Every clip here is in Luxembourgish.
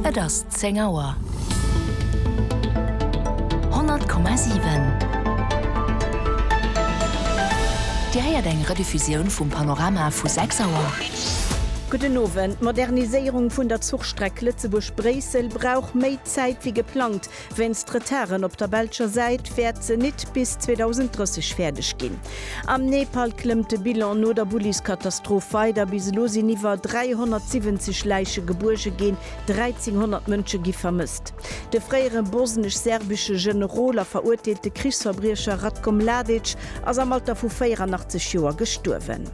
Et ass 10 Auer. 100,7 Dir héiert eng Rediffusioun vum Panorama vu 6 Auer. Gudden Owend. D'Moderniséierung vun der Zuchstreck Lëtzebuerg-Bréissel brauch méi Zäit wéi geplangt. Wéinst Retarden op der belscher Säit wäert se nit bis 2030 fäerdeg ginn. Am Nepal klëmmt de Bilan no der Bulliskatastroph weider. Bis elo sinn iwwer 370 Läiche gebuerge ginn, 1.300 Mënsche gi vermësst. De fréiere bosnesch-serbesche Generol a verurteelte Krichsverbriecher Ratko Mladic ass am Alter vu 84 Joer gestuerwen.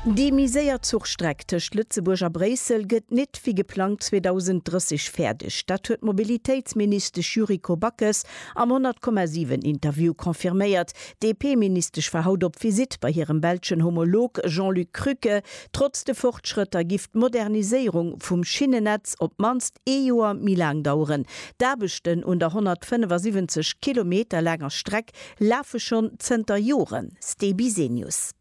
Déi méi séier Zuchstreck tëscht Lëtzebuerg a Bréissel gëtt nit gëtt wéi geplangt 2030 fäerdeg. Dat huet d'Mobilitéitsministesch Yuriko Backes am 100,7 Interview confirméiert. D'DP-Ministesch war haut op Visitt bei hirem belschen Homolog Jean-Luc Krücke. Trotz de Fortschrëtter giff d'Moderniséierung vum Schinnennetz op d'mannst ee Joer méi laang daueren. D'Aarbechten un der 175 Kilometer laanger Streck lafe schonn zënter Joren. Ste Bisenius.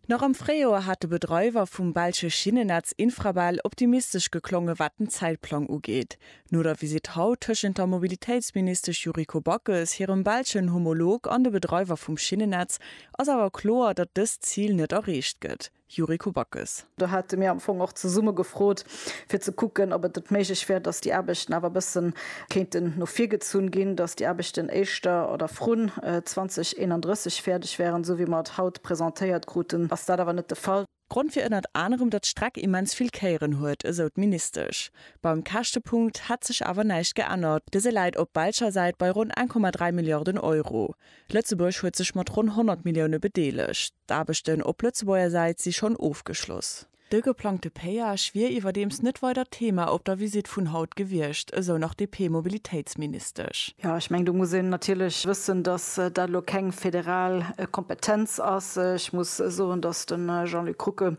Nach am Fréijoer hat de Bedreiwer vum belsche Schinnennetz Infrabel optimistesch geklongen, wat den Zäitplang ugeet. No der Visitt haut tëschent der Mobilitéitsministesch Yuriko Backes hirem belschen Homolog an de Bedreiwer vum Schinnennetz ass awer kloer, datt dëst Zil net erreecht gëtt. Yuriko Backes. Do hate mir am Fong och zesumme gefrot, fir ze kucken, ob et net méiglech wär, dass déi Aarbechten awer e bësse kéinten no vir gezunn ginn, dass déi Aarbechten éischter oder vrun 2031 fäerdeg wäeren. Esou wéi mer et haut presentéiert kruten, ass dat awer net de Fall. Grond wier ënnert anerem, datt d'Streck immens vill Kéieren huet, esou d'Ministesch. Beim Käschtepunkt hätt sech awer näischt geännert, dëse läit op belscher Säit bei ronn 1,3 Milliarden Euro. Lëtzebuerg huet sech mat ronn 100 Millioune bedeelegt. D'Aarbechten op Lëtzebuerger Säit si schonn ofgeschloss. De geplangte Péage wier iwwerdeems net weider Thema op der Visitt vun haut gewiescht, esou nach d'DP-Mobilitéitsministesch. Jo, ech mengen, do muss een natierlech wëssen, datt dat elo keng federal Kompetenz ass. Ech muss soen, datt de Jean-Luc Rucke,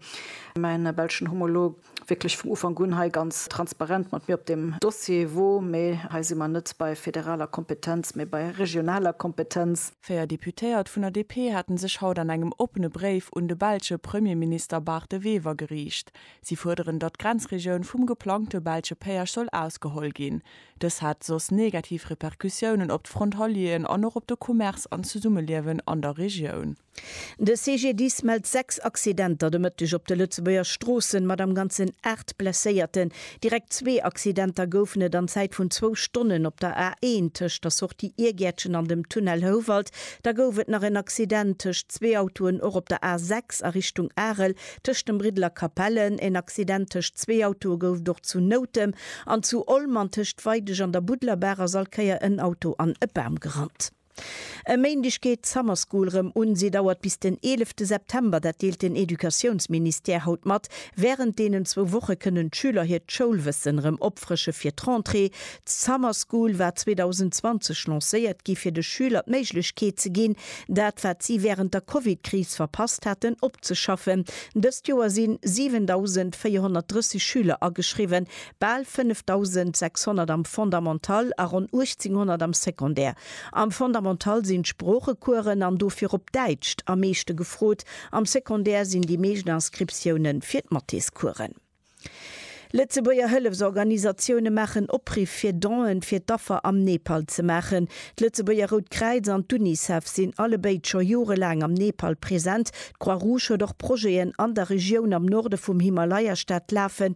mäi belschen Homolog, wierklech vum Ufank un hei ganz transparent mat mir op deem Dossier wor, mee hei si mer net bei federaler Kompetenz, mee bei regionaler Kompetenz. Véier Deputéiert vun der DP hate sech haut an engem oppene Bréif un de belsche Premierminister Bart De Wever geriicht. Si fuerderen, datt d'Grenzregioun vum geplangte belsche Péage soll ausgeholl ginn. Dës hätt soss negativ Repercussiounen op d'Frontalieren an och op de Commerce an d'Zesummeliewen an der Regioun. De CGDIS mellt 6 Accidenter de Mëtteg op de Lëtzebuerger Stroossen mat am Ganzen 8 Blesséierten. Direkt zwee Accidenter goufen et an Zäit vun zwou Stonnen op der A1 tëscht der Sortie Iergäertchen an dem Tunnel Houwald. Da gouf et nach en Accident tëscht zwee Autoen och op der A6 a Richtung Arel tëscht dem Briddel a Capellen. En Accident tëscht zwee Autoe gouf et och zu Noutem an zu Olm an tëscht Weidesch an der Budlerbaach ass all Kéier en Auto an e Bam gerannt. E Méindeg geet d'Summer School rëm un. Si dauert bis den 11 de September, dat deelt den Educatiounsministère haut mat. Wärend deenen zwou Woche kënnen d'Schüler hiert Schoulwëssen rëm opfrësche fir d'Rentrée. D'Summer School war 2020 lancéiert gi fir de Schüler d'Méiglechkeet ze ginn, dat wat si wärend der Covid-Kris verpasst haten, opzeschaffen. Dëst Joer sinn 7.430 Schüler ageschriwwen, Bal 5600 am Fondamental a ronn 1800 am Secondaire. Am Fondamental sinn d'Sproochecoursen, an do virop Däitscht, am meeschte gefrot, am Secondaire sinn déi meescht Inscriptioune fir d'Mathéscoursen. Lëtzebuerger Hëllefsorganisatioune maachen Opriff fir Donen fir d'Affer am Nepal ze maachen. D'Lëtzebuerger Rout Kräiz an d'Unicef sinn allebéid scho jorelaang am Nepal present. D'Croix-Rouge huet och Projeten an der Regioun am Norde vum Himalaya-Staat lafen,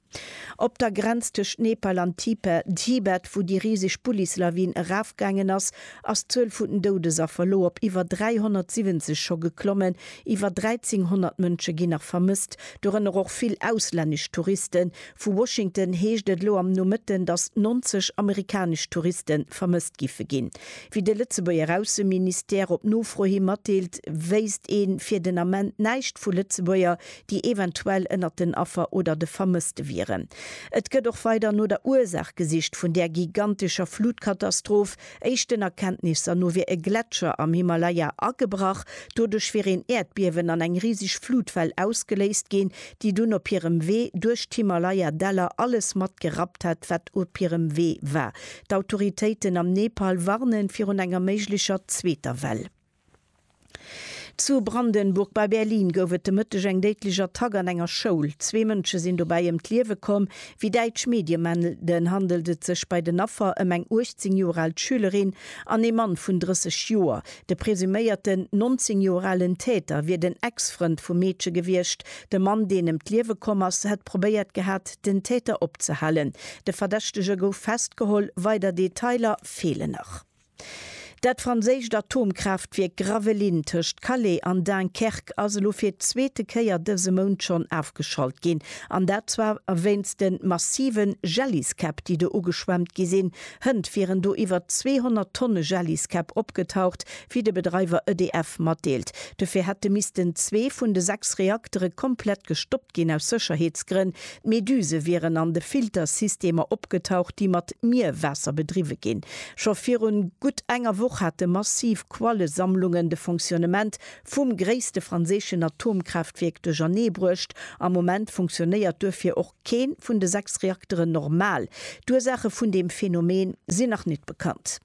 Op der Grenz tëscht Nepal an Tipe, Tibet, wou déi riseg Bullis-Lawin erafgaangen ass, ass d'Zuel vun den Doudesaffer elo op iwwer 370 scho geklommen. Iwwer 1.300 Mënsche ginn nach vermësst, dorënner och vill auslännesch Touristen. Vu Washington heescht et elo am Nomëtten, datt 90 amerikanesch Touriste vermësst giffe ginn. Wéi de Lëtzebuerger Ausseministère op Nofro hi matdeelt, wéisst ee fir den Ament näischt vu Lëtzebuerger, déi eventuell ënnert den Affer oder de Vermësste wieren. Et gëtt och weider no der Ursaach gesicht vun där gigantescher Flutkatastroph. Éischten Erkenntnisser no wier e Gletscher am Himalaya agebrach. Doduerch wier een Äerdbiewen an eng riseg Flutwell ausgeléist ginn, déi dunn op hirem Wee duerch d'Himalaya-Däller alles mat gerappt hätt, wat op hirem Wee war. D'Autoritéiten am Nepal warnen virun enger méiglecher zweeter Well. Zu Brandenburg bei Berlin gouf et de Mëtteg eng déidlech Attack an enger Schoul. Zwee Mënsche sinn dobäi ëm d'Liewe komm. Wéi däitsch Medie melden, handelt et sech bei den Affer ëm eng 18 Joer al Schülerin an ee Mann vun 30 Joer. De presuméierten 19 Joer alen Täter wier den Ex-Frënd vum Meedche gewiescht. De Mann, deen ëm d'Liewe komm ass, hätt probéiert gehat, den Täter opzehalen. De Verdächtege gouf festgeholl, weider Detailer feelen nach. Dat franséischt Atomkraaftwierk Gravelines tëscht Calais an Dunkerque ass elo fir d'zweete Kéier dëse Mount schonn ofgeschalt ginn. An dat zwar wéinst de massive Jelliskäpp, déi do ugeschwemmt gi sinn. Hënt wieren do iwwer 200 Tonne Jelliskäpp opgetaucht, wéi de Bedreiwer EDF matdeelt. Dofir hätte missten zwee vun de sechs Reaktere komplett gestoppt ginn, aus Sécherheetsgrënn. D'Meduse wieren an de Filtersystemer opgetaucht, déi mat Mierwaasser bedriwwe ginn. Scho virun gutt enger Woch hate massiv Quallesammlungen de Fonctionnement vum gréisste franséischen Atomkraaftwierk duerchernee bruecht. Am Moment funktionéiert duerfir och kee vun de sechs Reakteren normal. D'Ursaache vun deem Phänomen sinn nach net bekannt.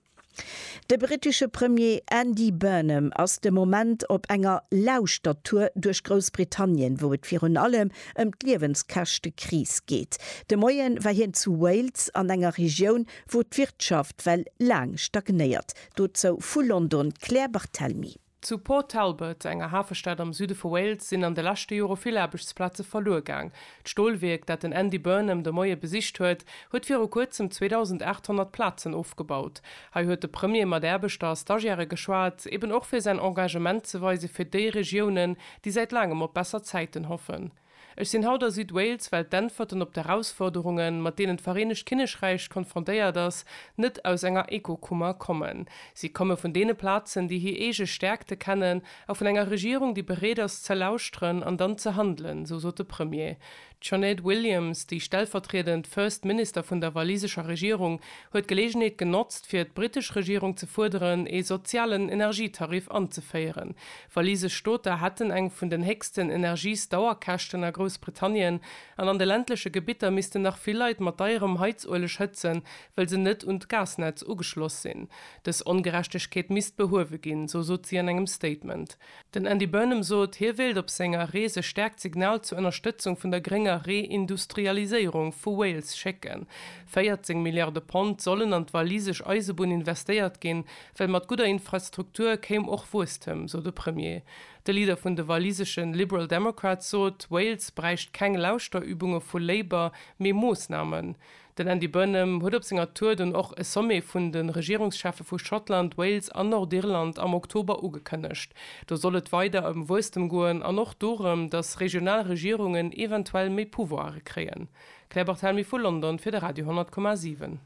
De brittesche Premier Andy Burnham ass de Moment op enger Lauschtertour duerch Groussbritannien, wou et virun allem ëm d'Liewenskäschtekris geet. De Moie war hien zu Wales, an enger Regioun, wou d'Wirtschaft well laang stagnéiert. Dozou vu London d'Claire Barthelmy. Zu Port Talbot, enger Hafestad am Süde vu Wales, sinn an de leschte Jore vill Aarbechtsplaze verluer gaang. D'Stolwierk, dat den Andy Burnham de Moie besicht huet, huet viru kuerzem 2.800 Plazen ofgebaut. Hei huet de Premier mat Aarbechter a Stagiairë geschwat, eben och fir säin Engagement ze weise fir déi Regiounen, déi säit laangem op besser Zäiten hoffen. Ech sinn haut a Südwales, well d'Äntwerten op d'Erausforderungen, mat deenen d'Vereenegt Kinnekräich konfrontéiert ass, net aus enger Ekokummer kommen. Si komme vun deene Plazen, déi hir eege Stäerkte kennen, a vun enger Regierung, déi bereet ass, ze lauschteren an dann ze handelen, esou sot de Premier. D'Sinéad Williams, déi stellvertriedend First Minister vun der walisescher Regierung, huet d'Geleegenheet genotzt, fir d'britesch Regierung ze fuerderen, ee sozialen Energietariff anzeféieren, Wallis a Stoter hätten eng vun den héchsten Energiesdauerkäschten a Groussbritannien an an de ländleche Gebitter missten nach vill Leit mat deierem Heizueleg hëtzen, well se net un d'Gasnetz ugeschloss sinn. Dës Ongerechtegkeet misst behuewe ginn, sou sot si an engem Statement. Den Andy Burnham sot, hie wéilt op senger Rees e staarkt Signal zur Ënnerstëtzung vun der grénger Reindustrialiséierung vu Wales schécken. 14 Milliarde Pond sollen an d'wallisesch Eisebunn investéiert ginn, Well mat gudder Infrastruktur kéim och Wuesstem, sou de Premier. De Leader vun de waliseschen Liberal Democrats sot, Wales bräicht keng Lauschterübunge vu Labour, mee Moossnamen. Den Andy Burnham huet op senger Tour dunn och e Sommet vun de Regierungscheffe vu Schottland, Wales an Nordirland am Oktober ugekënnegt. Do soll et weider ëm Wuesstem goen an och dorëm, datt regional Regierungen eventuell méi Pouvoire kréien. Claire Barthelmy vu London fir de Radio 10,7.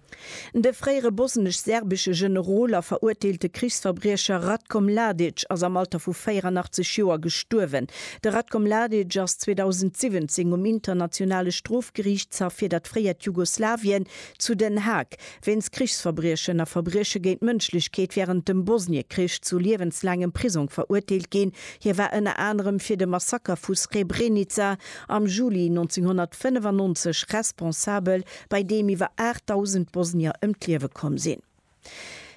De fréiere bosnesch-serbesche Generol a veruerteelte Krichsverbriecher Ratko Mladic ass am Alter vu 84 Joer gestuerwen. De Ratko Mladic ass 2017 um Internationale Strofgeriichtshaff fir dat fréiert Jugoslawien zu Den Haag wéinst Krichsverbriechen a Verbrieche géint d'Mënschlechkeet wärend dem Bosniekrich zu liewenslaangem Prisong veruerteelt ginn. Hie war ënner anerem fir de Massaker vu Srebrenica am Juli 1995 responsabel, bei deem iwwer 8.000 Bosnier ëm d'Liewe komm sinn.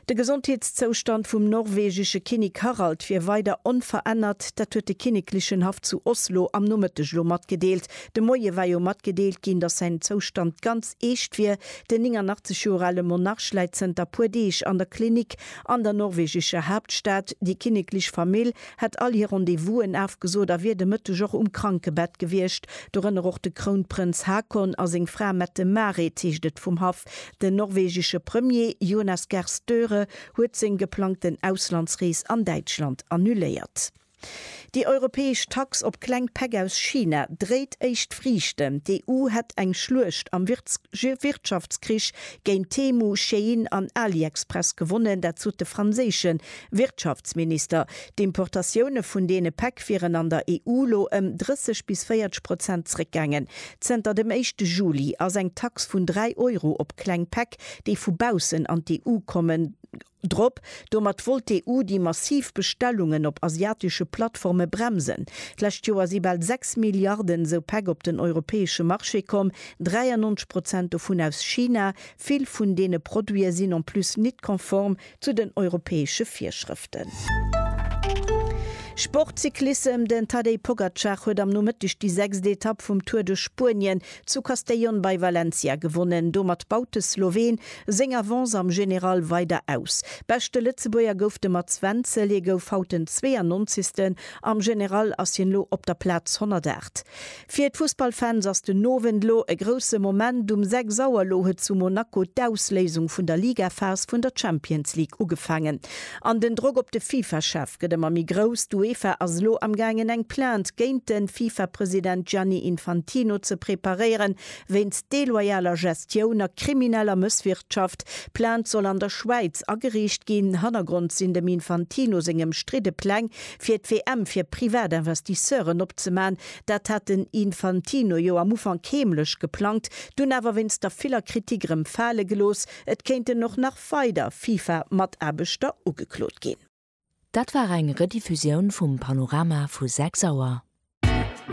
De Gesondheetszoustand vum norwegesche Kinnek Harald wier weider onverännert, dat huet de kinneklechen Haff zu Oslo am Nomëtteg elo matgedeelt. De Moie war jo matgedeelt ginn, datt säin Zoustand ganz eescht wier. Den 89 Joer ale Monarch läit zënter e puer Deeg an der Klinik an der norwegescher Haaptstad. Déi kinneklech Famill hätt all hir Rendez-vousen afgesot a wier de Mëtteg och um Krankebett gewiescht, dorënner och de Krounprënz Haakon a seng Fra Mette-Marit, heescht et vum Haff. Den norwegesche Premier Jonas Gahr Støre huet seng geplangten Auslandsrees an Däitschland annuléiert. Déi europäesch Tax op kleng Päck aus China dréit éischt Friichten. D'EU hätt eng Schluecht am Wirtschaftskrich géint Temu, Shein an AliExpress gewonnen, dat sot de franséische Wirtschaftsminister, D'Importatioune vun deene Päck wieren an der EU lo ëm 30 bis 40 Prozent zréckgaangen. Zënter dem éischte Juli ass eng Tax vun 3 Euro op kleng Päck, déi vu baussen an d'EU kommen, drop. Domat wollt d'EU déi massiv Bestellungen op asiatesche Plattforme bremsen. D'lescht Joer si bal 6 Milliarden esou Päck op den europäesche Marché komm, 93 Prozent dovun aus China. Vill vun deene Produite sinn en plus nit konform Zu den europäesche Virschrëften. Sport, Cyclissem, Den Tadej Pogacar huet am Nomëtteg déi sechst Etapp vum Tour de Spuenien zu Castellón bei Valencia gewonnen. Domat baut de Sloween seng Avance am General weider aus. Beschte Lëtzebuerger gouf de Mats Wenzel, hie gouf haut den 92. Am General ass hien elo op der Plaz 108. Fir d'Fussballfans ass den Owend lo e grousse Moment. Um 6 Auer lo huet zu Monaco d'Ausléisung vun der Ligaphas vun der Champions League ugefaangen. An den Drock op de FIFA-Chef gëtt ëmmer méi grouss. D'Uefa ass lo am gaangen eng Plainte géint de FIFA-President Gianni Infantino ze preparéieren, wéinst deloyaler Gestioun a krimineller Mësswirtschaft. D'Plainte soll an der Schwäiz ageriicht ginn. Hannergrond sinn dem Infantino seng ëmstridde Pläng fir d'WM fir Privatinvestisseuren opzemachen, Dat hat den Infantino jo am Ufank heemlech geplangt, dunn awer wéinst der viller Kritik erëm fale gelooss. Et kéinten och nach weider FIFA-Mataarbechter ugeklot ginn. Dat war eng Rediffusioun vum Panorama vu 6 Auer.